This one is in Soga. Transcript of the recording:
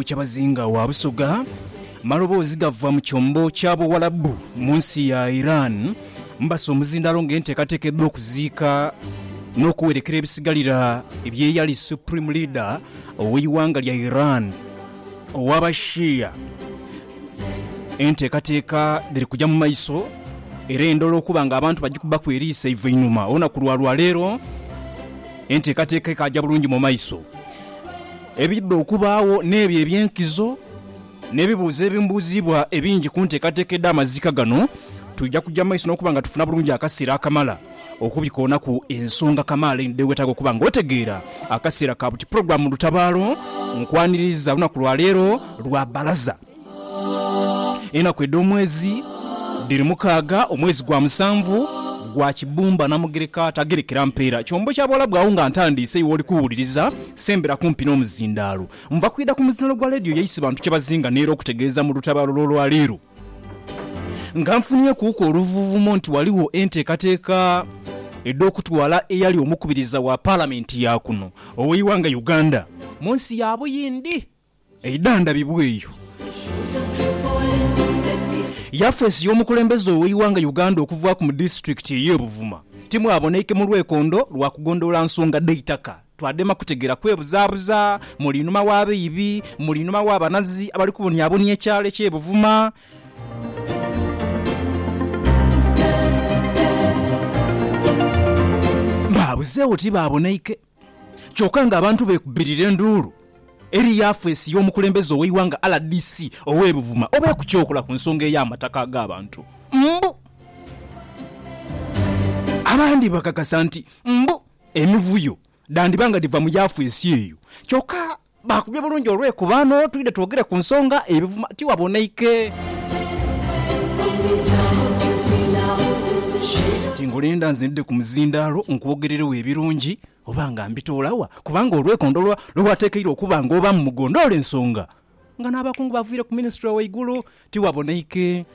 Kyabazinga wa Busoga. Maloboozi gava mu kyombo kya Buwalabu mu nsi ya Iran mbasa omuzindaalo ng'enteekateeka edh'okuziika n'okuwerekera ebisigalira eby'eyali Supreme Leader ow'eighanga lya Iran ow'Abashia. Enteekateeka dhiri kugya mu maiso era endhola okuba ng'abantu bagikubaku eriiso eiva einhuma olunaku lwa lwaleero enteekateeka ekaaja bulungi mu maiso. Ebidha okubaagho n'ebyo eby'enkizo n'ebibuuzo ebimubuuzibwa ebingi ku nteekateeka edh'amaziika gano, twidha kuja mu maiso n'okuba nga tufuna bulungi akaseera akamala okubikoonaku ensonga kamaala einho dhewetaaga okuba nga otegeera. Akaseera ka buti pulogulaamu Lutabaalo nkwaniriiza olunaku lwa leero lwa Bbalaza. Enaku edh'omwezi dhiri mukaaga, omwezi gwa musanvu gwa kibumba. Namugereka tagerekera mpeera kyombo kya buwalabu. Agho nga ntandiise iwe oli kuwuliriza, sembera kumpi n'omuzindaalo. Nva kwidha ku muzindaalo gwa leediyo ya Isibantu kyebazinga n'era okutegeeza mu lutabaalo lw'olwaleero nga nfunhyekuuku oluvuuvumo nti ghaligho enteekateeka edh'okutwala eyali omukubiriza wa Palamenti ya kuno ow'eighanga Uganda mu nsi ya Buyindi. Eidhandhabibwa eyo yafeesi y'omukulembeze ow'eighanga Uganda okuvaaku mu disitulikiti ey'e Buvuma timwaboneike mu lwekondo lwa kugondhoola nsonga dh'eitaka. Twadema kutegeera kwebuzaabuza muli inhuma w'abaibi, muli inhuma w'abanazi abali kubonyabonya ekyalo eky'e Buvuma. Baabuzeegho tibaaboneike. Kyoka nga abantu beekubirira enduulu eri yafeesi y'omukulembeze ow'eighanga rdc ow'e Buvuma oba ekukyokola ku nsonga ey'amataka ag'abantu mbu abandi bakakasa nti mbu emivuyo dhandiba nga dhiva mu yafeesi eyo kyoka Baakubye bulungi olwekuba no twidhe twogere ku nsonga ebivuma tiwaboneike. Tingulinda nze ndidhe ku muzindaalo nkwogereregho ebirungi oba nga mbitoola wa? Kubanga olwekondo lwa lwe wateekeirwe okuba nga obaamu mu gondoola ensonga nga n'abakungu baviire ku minisitule waigulu tiwaboneike.